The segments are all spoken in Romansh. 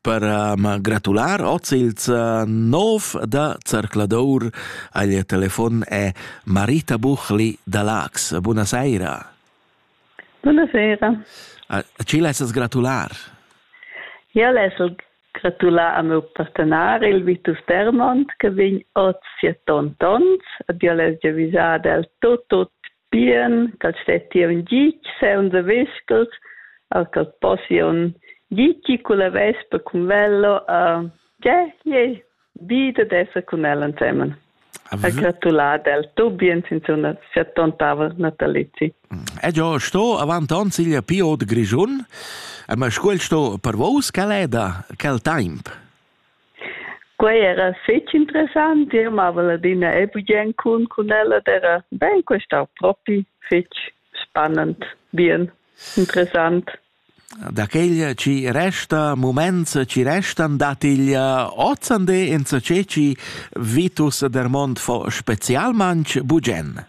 per ma gratular oz ils nov da Zercladour agl telefon è Marita Buchli da Lax. Buonasera. Buonasera. Ci lessas gratular? Ja lessel gratular a meu partenar, il Vitus Dermont, che vegn oz siet tont ons, ad io les avisar del tot tot bien ch'el stettia ün gitg sainza vischer a ch'el possia ün gitgi culla vespa cun velo a già je bi dad esser cun el ensemen. Ha gratulà del Tubien sinzuna sia tontava natalizi. Ed io sto avant ons il Pio de Grischun, ma scuel sto per vos caleda quel temp. Quei era fetg interessant, jeu mavel adina e bugen cun cun ella era bein questau propi fetg spannend, bien, interessant. Da quegl chi resta muments chi restan dat il ozande insacé chi Vitus der Mond fo specialmanch bugen.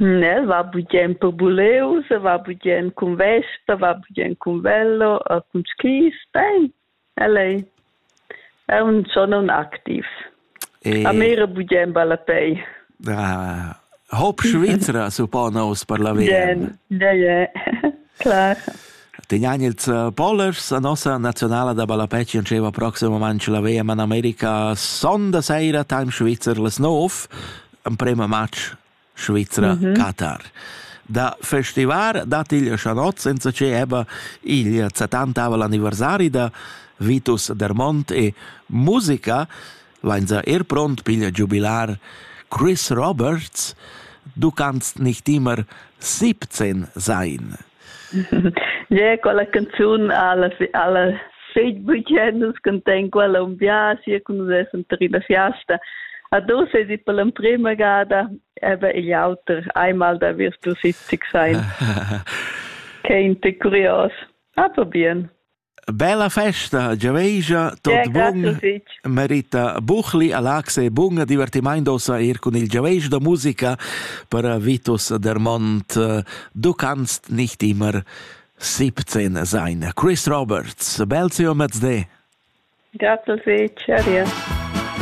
Ne, va bugen per buleus, va bugen cun vesta, va bugen cun velo e cun skis. Bein, el ei, è un schon un activ. E... A me era bugen ballapei. Ah, Hopp Schweizer suppone us per la via. Bien, ja, ja, klar. Tenianils eh, Polers, la nostra nazionale da ballapè ci diceva prossimo moment la VM in America sonda sera time Schweizer les 9 emprema match Svizra mm -hmm. Qatar. Da festivar dat il Chanot senza che eba il setantava l'anniversari da Vitus Dermont e musica Leinza er pront piglia giubilar Chris Roberts, du kannst nicht immer 17 sein. Yeah, quella canzun alla alla seit bugen nus contegn quella un biasi cun nus essem ter ina fiasta a dos es i per l'emprema gada ebe igl auter einmal da wirst du 70 sein Kein te curios aber bien Bella festa, giavegia, tot bun, merita buchli, a Lax e bun divertimaint ossa ir cun il giavegia da musica per Vitus Dermont. Du kannst nicht immer 17 sein. Chris Roberts, bel ziom mezde. Grazie, Cheerio.